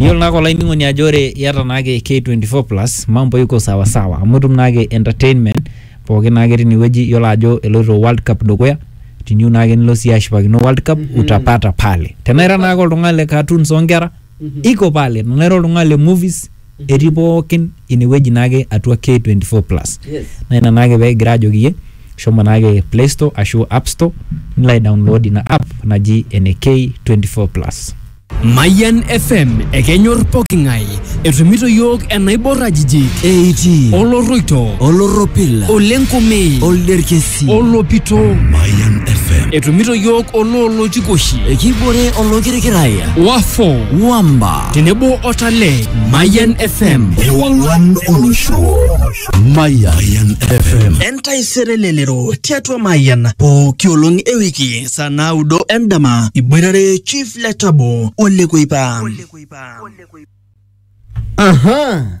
Yiolo naake olainining'oni ajo ore iyata naake K24 plus mambo iko sawa sawa amu itum naake entertainment pookin naake tine wueji iyiolo ajo eloito world cup dukuya teniyieu naake nilo siyie ashipakino world cup utapata pale. Tenaa ira naake oltung'ani le cartoons oo nkera iko pale, tenaa ira oltung'ani le movies. etii pookin inewueji naake atua K24 plus. Naa ina naake pee kigira ajoki iyie shomo naake play store ashu app store nilo aidownload ina app naji ene K24 plus. Mayian FM ekenyor poking'ae etumito iyiook enaibor ajijik eitii olorroito olorropil olenkume olderkesi olopito Mayan FM. etumito iyiook oloolotikoshi ekibore olokirikiraya wafo wamba tenebo o Talent. Mayan FM. Ewang'an olosho. Mayan FM. Entaisere lelero tiatua Mayan pooki olong e wiki saa naudo endama iboitare Chief Letabo Ole Kuipa. Aha.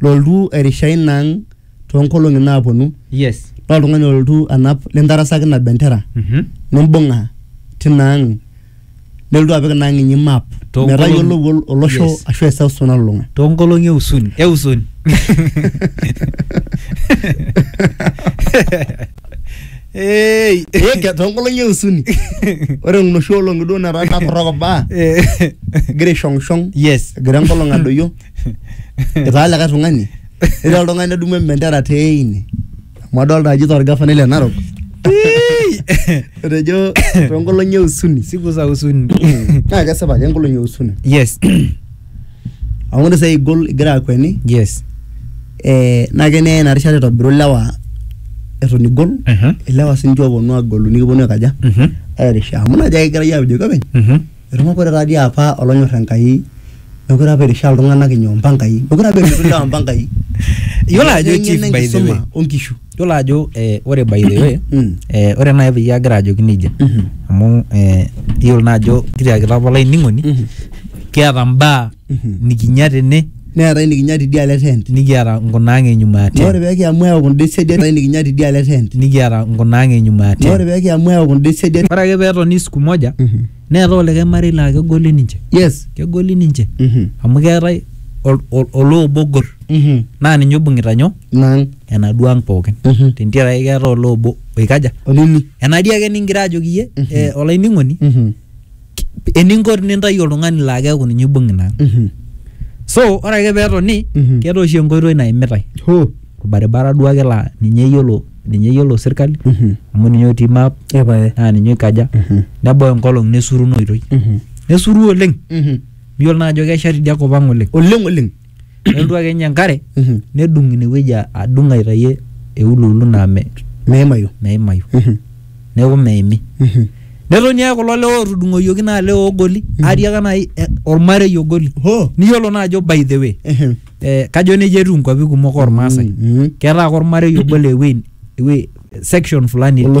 loltu airisha ina ang toonkolong'i naaponu yes naa oltung'ani olotu anap lintarasaki ina bendera Mhm. nimbung'a tina ang nelotu apik ina ang inyi map Toonkolong'i- metayiolou ol- olosho Yes. ashu eseuseu nalulung'a toonkolong'i eusuni eusuni Hey. Eke, toonkolong'i eusuni ore noshi olong'i duo netaa natorrok baa Eh. egira aishong'ishong yes egira enkolong adoyio itaa likae tung'ani ira oltung'ani nedumu embendera teine amu adolta ajo itaa orgafanai le narok etejo toonkolong'i e usuni siku za usuni naa kesipa ajo enkolong'i e usuni yes amu ore sai igol igira akweni yes eh, naa kenyae ina rishata itobiru ilewa eton igol Mhm. ilewa sinche oponu agolu nikiponu aikaja Mhm. airishie amu najo ake egirai ajoki openy Mhm. Etupukore taa dii apa olonyor Enkai mekure apa eirishaa iltung'anak inyoo impangai. Mekure apa eirishie ilewa impangai. Iyiolo ajo Etaa chief eng'eno by the way. enkisuma onkishu. Iyiolo ajo eh, ore by the way Mm. eh, ore naaji peyie agira ajoki nejia Mhm. amu eh, iyiolo naa ajo kitiakita apa olainining'oni Mhm. kiata imbaa nikinya tene neetae nikinya tidialo e tent nikiata nkunaang e nyuma ya naa ore tent pee kiamu ayau kunda esiadi neetae nikinya tidialo e tent nikiata nkunaang e nyuma ya naa ore tent pee kiamu ayau kunda esiadi ore ake peetoni siku moja neetae olikae marei laa kegoli ninche yes kegoli ninche Mhm. amu keetae ol- ol- oloobo ogor Mhm. naa ninye oibung'ita nyoo nang enaduo ang pookin Mhm. tentiaraki keetae oloobo oikaja olimi enatii ake ningira ajoki iyie eh, olainining'oni Mhm. eninko tinintayu oltung'ani laa keeku ninye ibung ina ang Mhm. so ore ake peetoni Mhm. keeta oshi enkoitoi naimitae Hoo. orbaribara duo ake laa ninye eyiolo ninye eyiolo sirkali Mhm. amu ninye otii map Epae. naa ninye oikaja Mhm. nebau enkolong nesuru ina oitoi Mhm. nesuru oleng Mhm. miyiolo naa ajo kesha tidia kop ang oleng Oleng oleng. nelotu ake ninye enkare Mhm. nedung inewueji a- adung aitayie euluulu naa me- meimayu meimayu Mhm. neeku meimi Mhm. netoni ake kulo lewa otudung'oyioki naa lewa ogoli Mhm. atii ake nai eh, ormarei ogoli Hoo. niyiolo naa ajo by the way Ehem. eh, kajo nejia etiu inkuapi kumok ormaasai Mhm. ketaa ake ormarei obo le ewuei ewuei section fulani Olosho